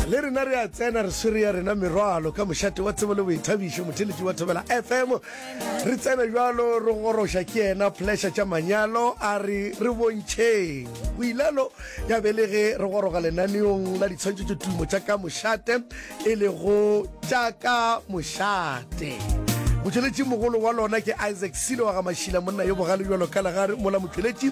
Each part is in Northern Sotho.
le rena re a tsena re swere ya rena merwalo ka mošate wa tsebo le boithabišo motheletši wa thobela fm re tsena jalo re goroša ke yena pleasure tša manyalo a re re bontšheng o ilalo ya be le ge re goroga lenaneong la ditshwantšho tše tumo tša ka mošate e lego tša ka mošate motšweletši mogolo wa lona ke isaac selo wa ga mašila monna yo bogale jalo ka lagare mola motšweletši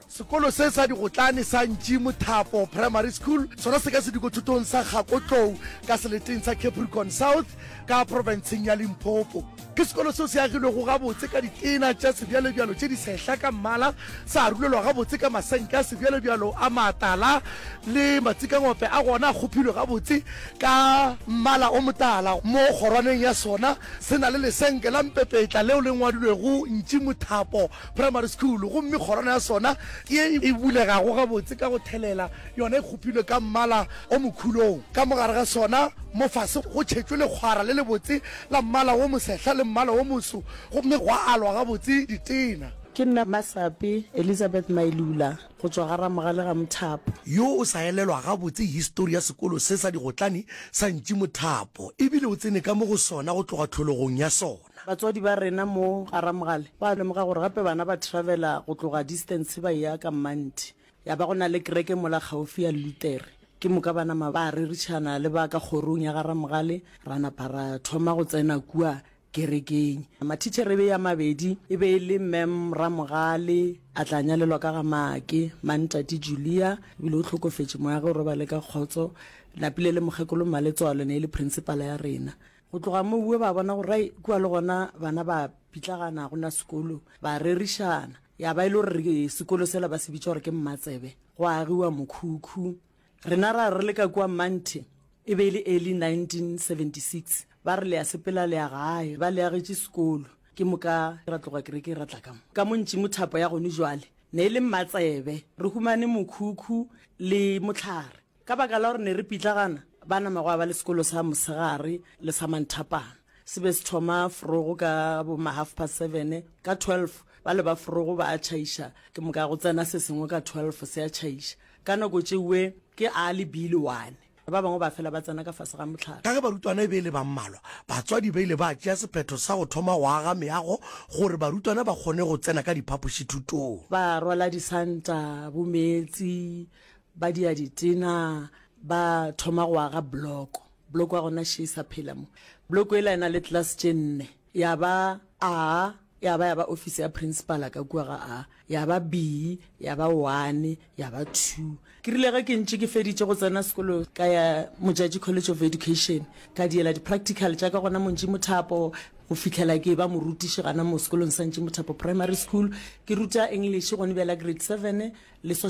Sekolo se sa digotlane sa Ntši Mothapo Primary School sona se ka sedikothutong sa Kgakotlou ka seleteng sa Capricorn South ka profenseng ya Limpopo. Ke sekolo seo se agilwego gabotse ka ditena tša sebjalebjalo tše di sehla ka mmala, sa arulelwa gabotse ka masenke a sebjalebjalo a matala le matsikangope a gona a kgopilwe gabotse ka mmala o motala. Mo kgorwaneng ya sona se na le lesenke la mpepetla leo le ngwadilwego Ntši Mothapo Primary School, gomme kgorwana ya sona ye e bulegago gabotse ka go thelela yona e kgopilwe ka mmala o mokhulong. Ka mo gare ga sona mofase go tšhetšwe lekgwara le lebotse la mmala wo mosehla le mmala wo moso gomme gwa alwa gabotse ditena. Ke nna Masapi Elizabeth Mailula go tšwa ga Ramogale ga Mothapo. Yo o sa elelwa gabotse histori ya sekolo se sa digotlane sa Ntši Mothapo ebile o tsene ka mo go sona go tloga tlhologong ya sona. rena. Batswadi ba rena mo Garamogale ba lemoga gore gape bana ba travela go tloga distance ba eya ka Mmanthi. Ya ba go na le kereke mola kgaofi ya Luthere. Ke moka ba nama ba rerišana le ba ka kgorong ya Garamogale ra napa ra thoma go tsena kua kerekeng. Mathitšhere e be e a mabedi, e be e le Ma'am Ramogale, a tla nyalelwa ka ga Maake, Ma'am Tate Julia, e bile o hlokofetše moya ge o robale ka kgotso. Napile le Mokgekolo Mmaletswalo e ne e le Principal ya rena. Go tloga mowe ba bona gore rai kua le gona bana ba pitlagana go na sekolo, ba rerišana. Ya ba e le gore sekolo sela ba se bitša gore ke Mmatsebe, go agiwa mokhukhu. Rena ra re le ka kua Manthe, e be e le early 1976, ba re le ya sepela le ya gae, ba le agetše sekolo. Ke moka ra tloga kereke ra tla ka mo. Ka mo Ntšimo thapo ya gone jwale ne e le Mmatsebe. Re humane mokhukhu le mohlare. Ka baka la gore ne re pitlagana, ba nama gwa ba le sekolo sa mosegare le sa manthapana. Se be se thoma forogo ka bo ma half past seven. Ka twelve ba le ba forogo ba a tšhaiša, ke moka go tsena se sengwe ka twelve se a tšhaiša. Ka nako tšeue ke early bile one. Ba bangwe ba fela ba tsena ka fase ga mohlare. Ka ge barutwana e be e le ba mmalwa, batswadi ba ile ba tšea sephetho sa go thoma go aga meago gore barutwana ba kgone go tsena ka diphapošithutong. Ba rwala disanta, bomeetsi, Ba dia ditena, ba thoma go aga bloko. Bloko ya gona še e sa phela mo. Bloko ela e na le tlelase tše nne, ya ba A, ya ba ya ba ofisi ya Principala ka kua ga A, ya ba B, ya ba One, ya ba Two. Ke rile ge ke ntše ke feditše go tsena sekolo ka ya Modjadji College of Education, ka diela di-practical tša ka gona mo Ntšimothapo go fihlela ke eba morutiši gana mo sekolong sa Ntšimothapo Primary School. Ke ruta English gone bjale ya Grade Seven le Social.